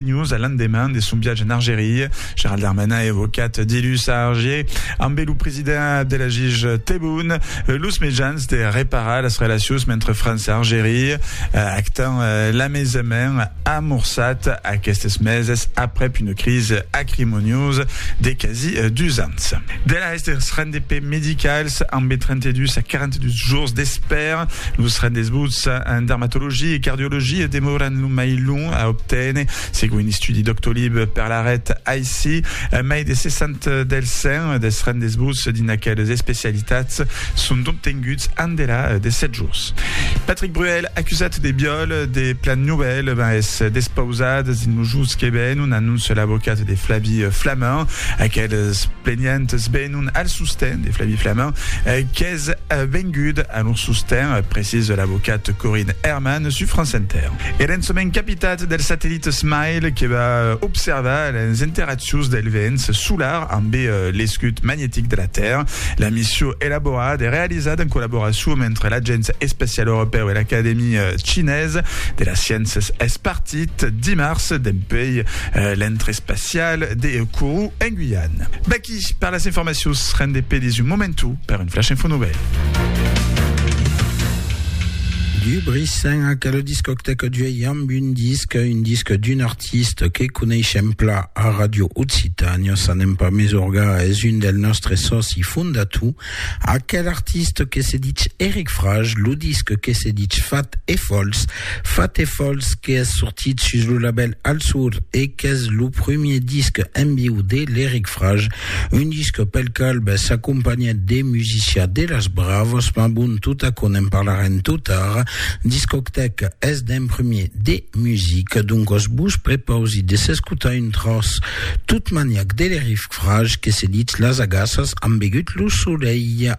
News, a l'endeman de son viatge en Argeria, Gerald Darmanin evocat dilhus a Argier ambe lo president Abdelajiz Tebboune los mejans de reparar las relacions mentre França Argeria actan l'amaisament amorçat aquestes meses aprèp una crise acrimoniosa de quasi dus ans. Aguest dels rendez-pés medicals ambe 32 a 42 jours d'espèra. Los rendez-vous en dermatologia e cardiologia demòran lo mai long a obténer, segon un estudi Doctolib per la ret aicí. Mai de 60 dels 100 dels rendez-vous dins aqueles especialitats son d'obtenguts endela de 7 jours. Patrick Bruel, acusat de viòl de Plan Nouvelle, es despausat dins lo jos que ven, un anonce l'avocat de Flavie Flament. Aquel Es plenientes venon al sosten de Flavie Flament, qu'es vengut a lor sosten, precisa l'avocat Corinne Hermann sus France Inter. E l'ençament capitat del satellit Smile que va observar las interaccions del vents solar ambe l'escut magnetic de la Tèrra. La mission elaborada e realizada en collaboracion entre l'Agéncia Espacial Europèu e l'Acadèmia Chinesa de las Sciéncias es partit dimars dempuèi l'entre espacial. Cial de Kourou en Guyane. Mèqui per las informacions, rende pedis un momentu per un flash info novèl. Du Brissain ac a la discoctèca d'uèi amb un disc, un disc d'un artista que coneishem plan a Radio Occitània, s'anem pas mesorgar, es un del nòstre sòci fondator, Aquel artiste que se ditz Eric Frage, lo disc que se ditz Fat e Fols. Fat e Fols qu'es sortit sus lo label Alsur e qu'es lo premier disc en viu de l'Eric Frage, un disc pel qual ben, s'acompanhèt de musicià de las bravas, ma bon, tot aquò n'en parlarem tot ara. Discotèc es d'un premier de music, doncas vos prepausi de s'escotar un tros tot maniac de l'Eric Fraj que se ditz las agaças, an begut lo solelh.